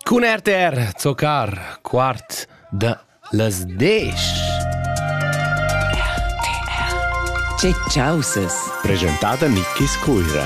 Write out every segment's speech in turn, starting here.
Cun RTR Zocar, quart da las desch. Che chausas! Presentada Nickis Cuira,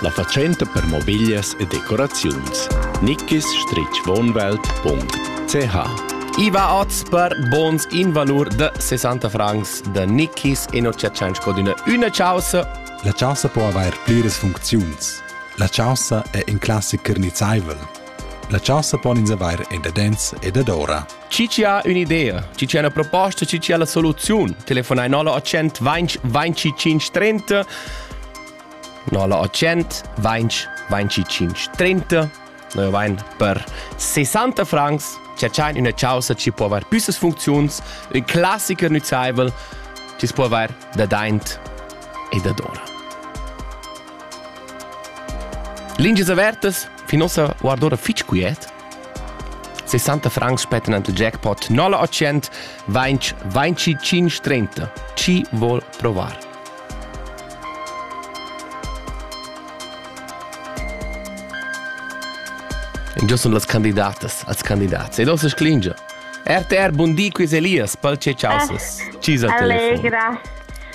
la fatschenta per mobiglias e decoraziuns. nickis-wohnwelt.ch Iva oz per bons in valur de 60 francs de Nickis e non ci accenci d'una una chausa. La chausa può avair pliras funcziuns. La chaussa è in classicher nizzaivel. La chaussa pon ins avair endadens e dadora. Chi ci ha un'idea? Chi ci ha una proposta? Chi ci ha la soluzione? Telefonai 0800 20 20 530 0800 20 20 530 Noi vain per 60 francs ci c'ha una chaussa ci può aver più funzioni, un classicher nuzzaivel ci può aver da daint e da dora. Lingias avertas, fin ossa guardora fitg quiet. 60 francs spetten ant jackpot 080 20 25 30. Chi vol provar? Giò sun las candidatas, als candidats. Ed ossa sclingia. RTR, bundi quiz Elias, pal ce ciausas. Ah, Cisa al telefono. Allegra.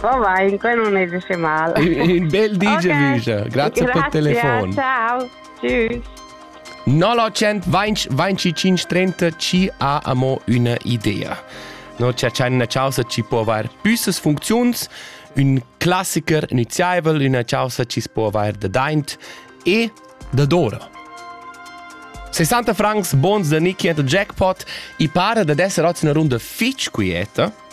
Va bene, quello non esce male. Un bel di, okay. Giaviscia. Grazie, Grazie per telefon. Ciao. Tschüss. 925 ci ha amo una idea. No, c'è una causa ci può aver büsses funzions, un classiker iniziaivel, una causa ci può aver da daint e da dora. 60 francs bons da Nicky and the Jackpot i para da esser oz una runda fitch quieta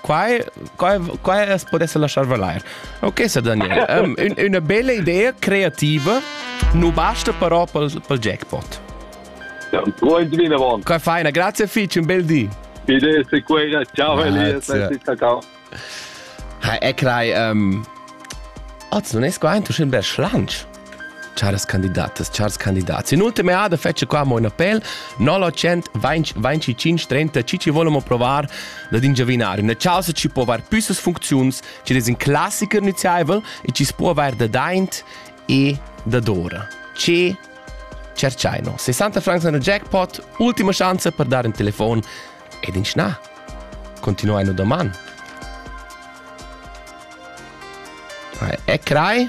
Quai, quai, quai as podesse lasciar valair. Ok, Sir Daniel, um, un, una bella idea creativa nu basta però pel, pel jackpot. Ja, Ruhe vinavant. Che feina, grazie fitch, un bel di. Bitte, sei quella. Ciao Elias, ciao. Ha, e crei, um, az non es qua ein tushin ber schlanch. Charas candidatas, chars candidats, in ultima eada fetscha qua mo in appel 0900 20 25 30 chi ci volemo provar da ingiavinar üna chausa chi po aver püssas funcziuns chi es in classiker nüziaivel e chi s'po avair da daint e da dora. Ce cerciaino. 60 francs in jackpot, ultima chance per dare un telefon ed in schna. Continuaino doman. È crai?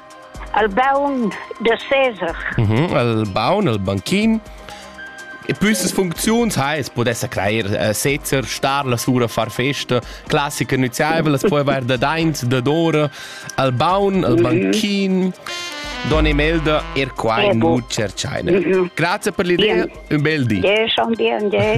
al baun da Cesar. Mm -hmm, al baun, al banchim. E püssas funcziuns ha es podessa crair äh, sezzer, star la sura far festa, classica nüziaivel, es poi vair da daint, da dora, al baun, al mhm. banchim, Don Imelda, er quai nu cerchaina. Mhm. Grazie per l'idea, un bel di. Ja, schon dir, ja.